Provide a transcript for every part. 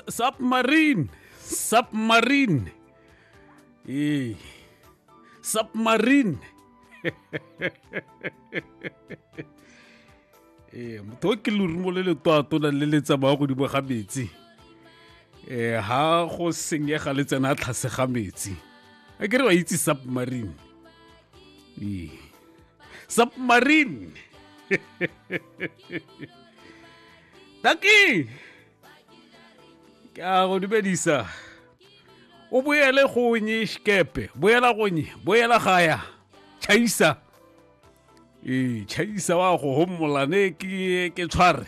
Submarine. Submarine. Hey. Submarine. ee motho o ke lorumo le le twatona le le tsamaya godimo ga metsi ee ha go senyega le tsena a tlhase ga metsi a kere ba itse submarine ee submarine taki ke a go dumedisa o boele gonye sekepe boela gonye boela gaya chaisa ee chaisa wa go homola ne ke ke tshware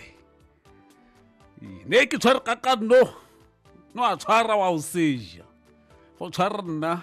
Ee, ne ke tshware ka kanno no a tshwara wa o seja go tshwara nna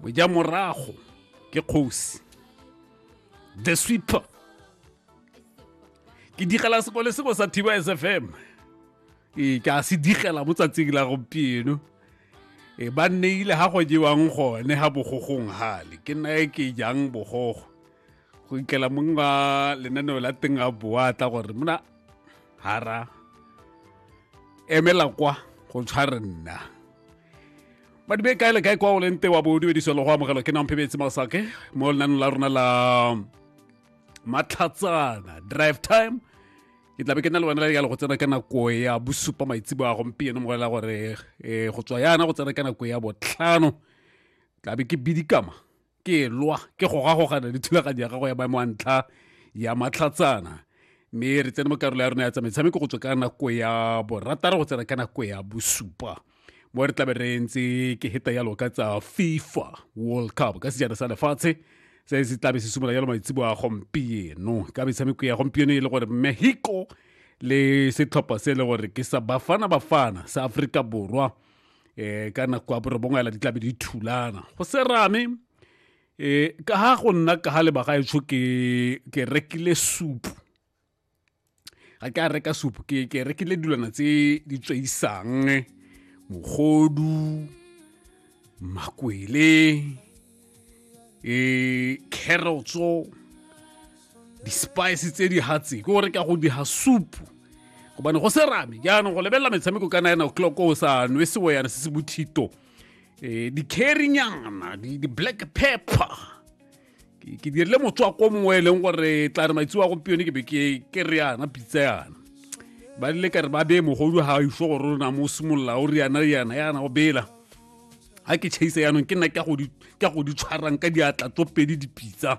moja morago ke kgosi the sweeper ke digela sekole seko sa thiba s f m ee ke a se digela mo tsatsing la gompieno e ba nneile ga go jewang gone ga bogogong gale ke nnae ke jang bogogo go ikela mong wa lenaneo la teng a boa tla gore mona hara emela kwa go tshware nna madibe kae le kae kwa o leng te wa bo dumediso le go amogelo ke nang phebetse masake mo lenanong la rona la matlhatsana drive time ke tlabe ke na le wena ya le go tsena ka nako ya bosupa maitsebo a gompieno mo la gore eh, go tswa yana go tsena ka nako ya botlhano tlabe ke bidikama ke lwa ke gogagogana le thulaganyo ya gago ya maemo a ntlha ya matlhatsana mme re tsene mo karolo ya rona ya tsa metshameko go tswa ka nako ya borataro go tsena ka nako ya bosupa mo re tlabe re ntse ke heta yalo ka tsa fifa world cup ka sejana sa lefatshe se se tlabe se simolola yalo maitsebo a gompieno ka metshameko ya gompieno e le gore mexico le setlhopha se e le gore ke sa bafana bafana sa aforika borwa eh ka nako ya borobongwe ela di tlabe di thulana go serame eh ka ha go nna ka ha lebaga e tsho ke ke rekile supu ga ke a reka supu ke ke rekile dilwana tse di tsweisang mogodu makwele e carrotso di-spice tse di hatse ke gore ka go di ha soup gobane go se rame jaanong go lebelela metshameko ka nine o'clock o sa nwe seoyana se se bothito um di-carrinyana di-black pepper ke dirile motswako mongwe e leng gore tla re maitseo a gompione ke be ke re yana pitsa yana ba lile ka re ba beye mogodu ga iso gore o na mo simolola o re yana yana yana go bela ga ke chase yanong ke nna ke go di tshwarang ka diatla tso pedi dipitsa